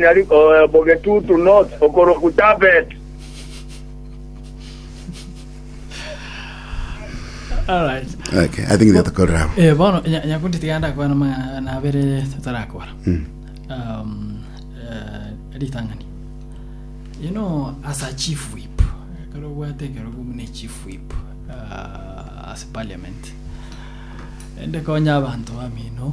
Nari bogetutu North okorokwa Tarbet. Alright. Okay, I think netokorera abo. Eh, bono nya- nyakundi tiga ndakwana amang'ana abere tatarakora Mm. um, eh, ritang'ani you know as a chief whip kare obwate ekero bumune chief whip uh, as parliament ende konya abanto bamino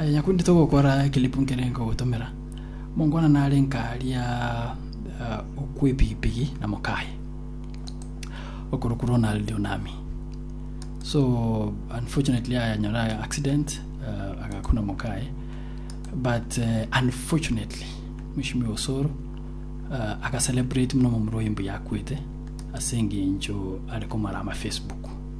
Aye nyakundi togokora ekelipu nkere nkogotomera, monkwana nare nkaria okw'epigipigi na mokaye okorokwa Ronald Onami. So unfortunately ayanyora accident uh, agakuna mokaye but uh, unfortunately mwishimi osoro uh, agacelebrate muno momura oye mbuya akwete ase engencho are komara ama Facebook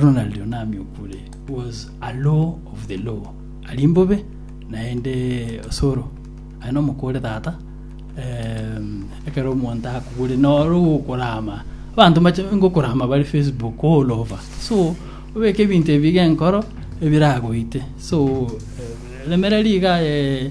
Ronald Onami Okure was a low of the low ari mbobe naende osoro aye nomokore tata um, ekero omonto akugure noro gokorama abanto mache ngokorama bari facebook all over so obeke ebinto ebi genkoro ebiragoite so eh, remera riga eh,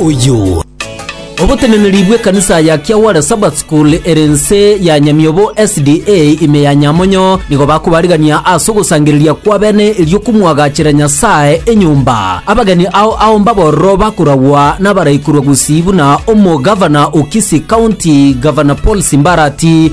Oyio. Oboteneneri bw'ekanisa ya Kiawara Sabbath School ere ense ya Nyamiobo SDA ime ya Nyamonyo nigo bakobarigania ase ogosangereria kw'abene erio komwagachera Nyasae enyomba. Abageni ao ao mbabororo bakoragwa nabaraikorwa gusii buna Omogavana o Kisii County, Gavana Paul Simbarati,